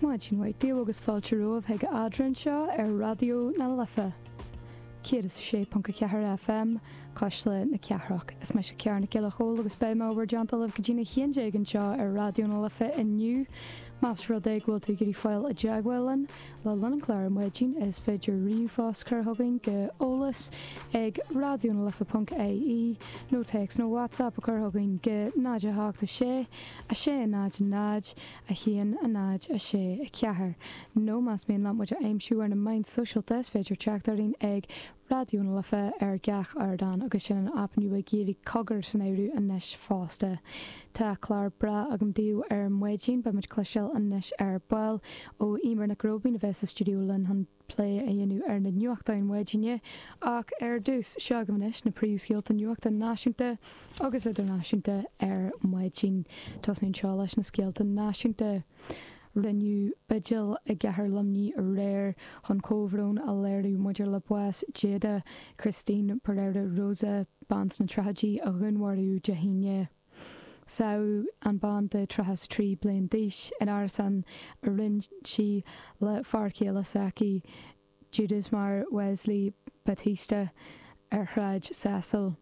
Maidin mhaith daoibh agus fáilte romhaibh chuig Eadrainn anseo ar Raidió na Life 106.4 FM, Cuisle na Cathrach. Is mise Ciara Nic Giolla Chomhaill agus beidh mé i bhur dteannta libh go dtí'n a haon déag anseo ar Raidió na Life inniu. Más rud é go bhfuil tú ag iarraidh fáil i dteagmháil linn le linn an chláir ar maidin is féidir ríomhphost chur chugainn go eolas ag raidionalife.ie nó téacs nó WhatsApp a chur chugainn go 0 8 6 6, 0, 0, 1, 0, 6, 4, nó más mian leat muid a aimsiú ar na meáin sóisialta, is féidir teacht orainn ag Raidió na Life ar gach ardán agus sin an aip nua ag iarraidh Cogar san áireamh anois fosta. Tá clár breá agam daoibh ar maidin, beimid cloisteáil anois ar ball ó Emer Nic Róibín a bheas sa stiúideo linn chun plé a dhéanamh ar na nuachtáin maidine ach ar dtús, seo agaibh anois na príomhscéalta nuachta náisiúnta agus idirnáisiúnta ar maidin. Tosaíonn seo leis na scéalta náisiúnta. Rinneadh bigil i gcathair Luimnigh aréir chun comhbhrón a léiriú maidir le bás Jada Christine Pereira Rosa, bean sna tríochaidí a dhúnmharaíodh Dé hAoine. Sádh an bhean de tríocha is trí bliain d'aois in árasán a roinn sí le fear céile s'aici, Judas Mair Wesley Battista, ar Shráid Cecil.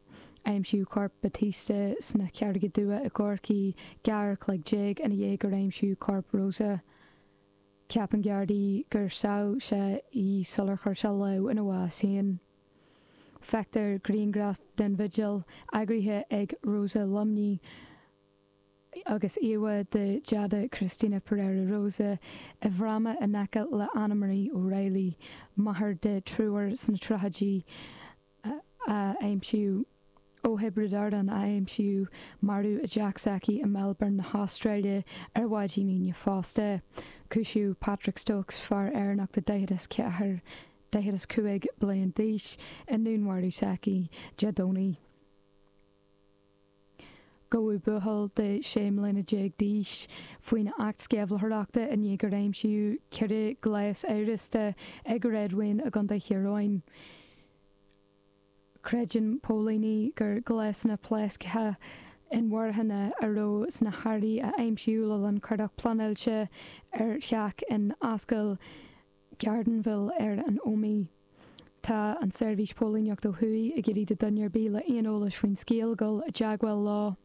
Aimsíodh corp Battista sna Carraige Dubha i gCorcaí dhá uair an chloig déag ina dhiaidh gur aimsíodh corp Rosa. Ceapann Gardaí gur sádh sé í sular chuir sé lámh ina bhás féin. Feictear grianghraf den bhigil, eagraithe ag Rosa Luimnigh agus íomhá de Jada Christina Pereira Rosa, i bhfráma in aice le Ann Marie O'Reilly, máthair de thriúr sna tríochaidí, a aimsíodh ó Thiobraid Árann a aimsíodh marbh i dteach s'aici i Melbourne na hAstráile ar mhaidin Aoine fosta. Cúisíodh Patrick Stokes, fear Éireannach de 44, 45 bliain d'aois, i ndúnmharú s'aici Dé Domhnaigh. Gabhadh buachaill de sé mbliana déag d'aois faoin Acht Sceimhlitheoireachta i ndiaidh gur aimsíodh ceithre ghléas amhrasta ag réadmhaoin i gContae Thír Eoghain. Creideann póilíní gur gléasanna pléasctha inmharthana a raibh sna hearraí a aimsíodh le linn cuardach pleanáilte ar theach in Ascaill Gardenville ar an Ómaigh. Tá an tSeirbhís Póilíneacht ó Thuaidh ag iarraidh do dhuine ar bith le aon eolais faoin scéal dul i dteagmháil leo.